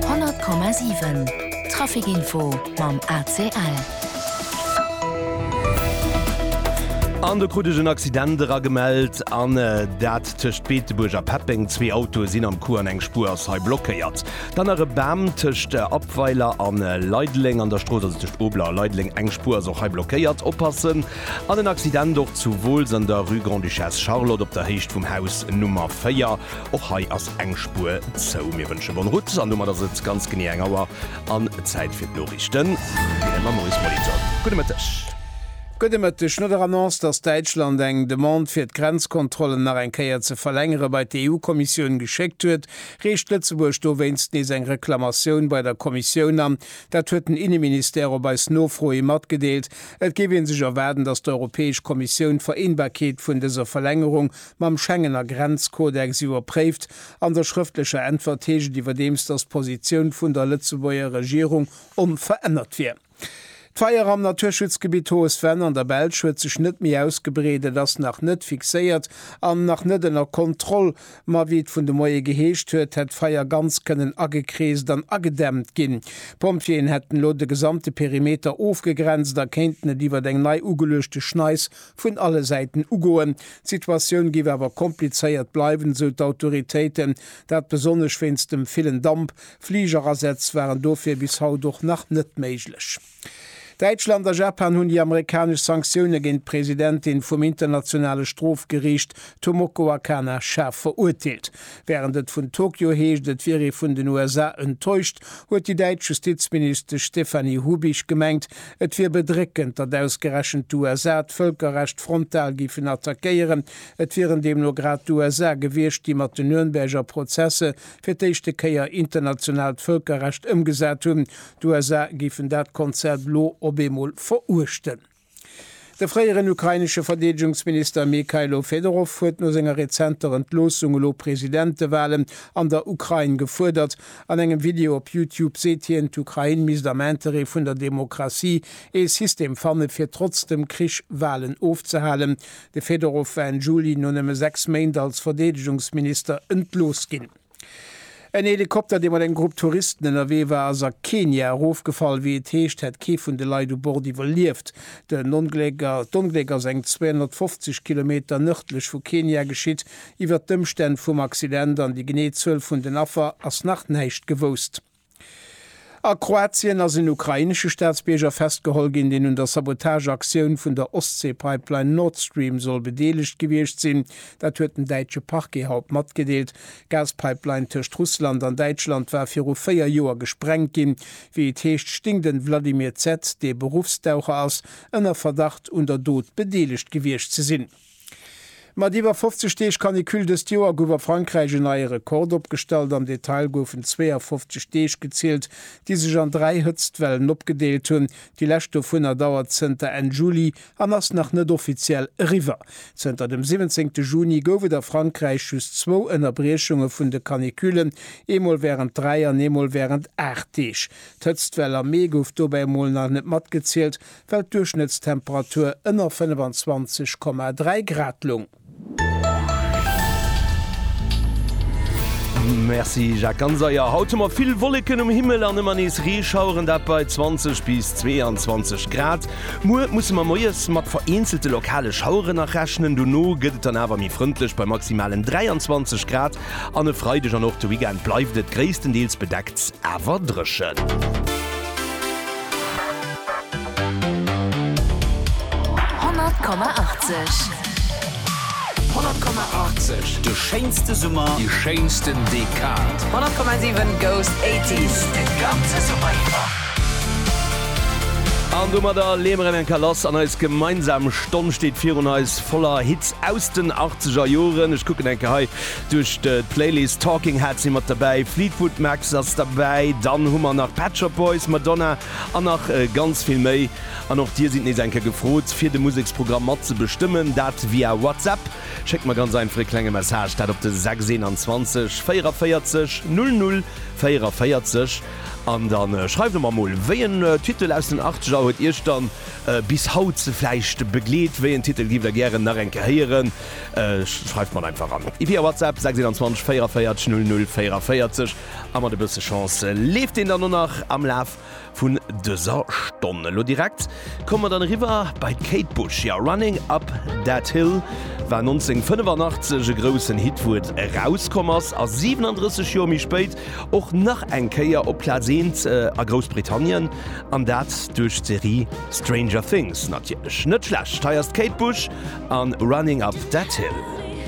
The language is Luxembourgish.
100,7 Trafic Info mam ACL. An do krut ech en Accident era gemellt, an dat tëscht Beetebuerg a Peppeng. Zwee Autoe sinn am Coup an eng Spuer ass hei blockéiert. Dann nach e Bam tëscht Abweiler a Leideleng an der Strooss, also tëscht Obeler a Leideleng. Eng Spuer ass och hei blockéiert. Oppassen! An en Accident och zu Wooltz an der Rue Grande-Duchesse Charlotte op der Héicht vum Haus Nummer 4. Och hei ass eng Spuer zou. Mir wënsche bonne route an domat ass et ganz genee eng Auer an Zäit fir d'Noriichten hei am Maurice Molitor. Gudde Mëtteg. Gudde Mëtteg. No der Annonce, datt Däitschland eng Demande fir d'Grenzkontrollen nach eng Kéier ze verlängere bei d'EU-Kommissioun geschéckt huet, reecht Lëtzebuerg dowéinst nees eng Reklamatioun bei der Kommissioun an. Dat huet den Inneministère op eis Nofro hi matgedeelt. Et géif ee sech erwaarden, datt d'Europäesch Kommissioun d'Vereenbarkeet vun dëser Verlängerung mam Schengener Grenzkodex iwwerpréift. An der schrëftlecher Äntwert heescht et iwwerdeems, datt d'Positioun vun der Lëtzebuerger Regierung onverännert wier. D'Feier am Naturschutzgebitt Hautes Vennes an der Belsch huet sech net méi ausgebreet. Et ass nach net fixéiert an nach net ënner Kontroll. Ma wéi et vun de Moie geheescht huet, hätt d'Feier ganz kënnen agekreest an agedämmt ginn. D'Pompjeeën hätten elo de gesamte Perimeter ofgegrenzt a kéinten et iwwert eng nei ugeluechte Schneis vun alle Säiten ugoen. D'Situatioun géif awer komplizéiert bleiwen, esou d'Autoritéiten, dat besonnesch wéinst dem villen Damp. Fligerasätz waren dofir bis haut och nach net méiglech. Däitschland a Japan hunn déi amerikanesch Sanktioune géint d'Presidentin vum Internationale Strofgeriicht Tomoko Akana schaarf verurteelt. Wärend et vun Tokio heescht, et wier ee vun den USA enttäuscht, huet déi däitsch Justizministesch Stéphanie Hubich gemengt, Et wier bedréckend, datt ausgerechent d'USA d'Vëlkerrecht frontal géifen attackéieren. Et wieren deemno grad d'USA gewiescht, déi mat den Nürnberger Prozesse fir d'éischte Kéier internationaalt Vëlkerrecht ëmgesat hunn. D'USA géifen dat Konzept elo op eemol veruechten. De fréieren ukrainesche Verdeedegungsminister Mykhailo Fedorov huet no senger rezenter Entloossung elo Presidentewalen an der Ukrain gefuerdert. An engem Video op Youtube seet hien, d'Ukrain misst am Interêt vun der Demokratie ee System fanne fir trotz dem Krich Walen ofzehalen. De Fedorov war Enn Juli no nëmme sechs Méint als Verdeedegungsminister entlooss ginn. En Helikopter, dee mat engem Grupp Touristen ënnerwee war, ass a Kenia erofgefall. Wéi et heescht, hätt kee vun de Leit u Bord iwwerlieft. D'Ongléck ass eng 250 Kilometer nërdlech vu Kenia geschitt. Iwwert d'Ëmstänn vum Accident an déi genee Zuel vun den Affer ass nach näischt gewousst. A Kroatien ass en ukrainesche Staatsbierger festgeholl ginn, deen un der Sabotageaktioun vun der Ostsee-Pipeline Nord Stream soll bedeelegt gewiescht sinn. Dat huet den däitsche Parquet haut matgedeelt. D'Gaspipeline tëscht Russland an Däitschland war viru véier Joer gesprengt ginn. Wéi et heescht, sting den Vladimir Z., dee Beruffstaucher ass, ënner Verdacht un der Dot bedeelegt gewiescht ze sinn. Mat iwwer 50 Deeg Canicule dëst Joer gouf a Frankräich en neie Rekord opgestallt. Am Detail goufen 52 Deeg gezielt, déi sech an dräi Hëtztwellen opgedeelt hunn. Déi lescht dovunner dauert zënter Enn Juli an ass nach net offiziell eriwwer. Zënter dem 17 Juni gouf et a Frankräich just zwou Ënnerbriechunge vun de Canicullen, eemol wärend dräi an eemol wärend aacht Deeg. D'Hëtztwell am Mee gouf dobäi emol nach net matgezielt, well d'Duerchschnëttstemperatur ënner 25,3 Grad loung. Merci Jacques, ganz eier. Haut hu mer vill Wolleken um Himmel an ëmmer nees Reeschaueren, dat bei 20 bis 22 Grad. Muer musse mer moies mat vereenzelte lokale Schaueren nach rechnen, dono gëtt et dann awer méi frëndlech bei maximalen 23 Grad. An e Freideg an och de Weekend bleift et gréisstendeels bedeckt awer dréchen. An domadder leeë mer erëm eng Kéier lass an eis gemeinsam Stonn steet virun eis. Voller Hits aus den achtzeger Joren. Ech kucken enke hei duerch d'Playlist. Talking Heads si mat derbäi, Fleetwood Max ass derbäi, dann hu mer nach Pet Shop Boys, Madonna an nach ganz vill méi. An och dir sidd nees eng Kéier gefrot, fir de Museksprogramm mat ze bestëmmen. Dat via WhatsApp. Schéckt mer ganz einfach e klenge Message, dat op de 621 44 00 44 an da schreift der mer emol, wéi en Titel aus den achtzeger huet iech dann Bis haut se vläicht begleet. Wéi en Titel giff der gären nach eng Kéier héieren? Schreift mer en einfach an via WhatsApp 621 44 00 44 a mat e bësse Chance leeft een dann o nach am Laf vun dëser Stonn. Elo direkt komme mer dann eriwwer bei d'Kate Bush. Jo, Running Up That Hill war 1985 e groussen Hit, wou et erauskomm ass, a 37 Joer méi spéit och nach eng Kéier op Plaz eent a Groussbritannien. An dat duerch d'Serie Stranger Things natierlech. Net schlecht, hei ass d'Kate Bush an Running Up That Hill.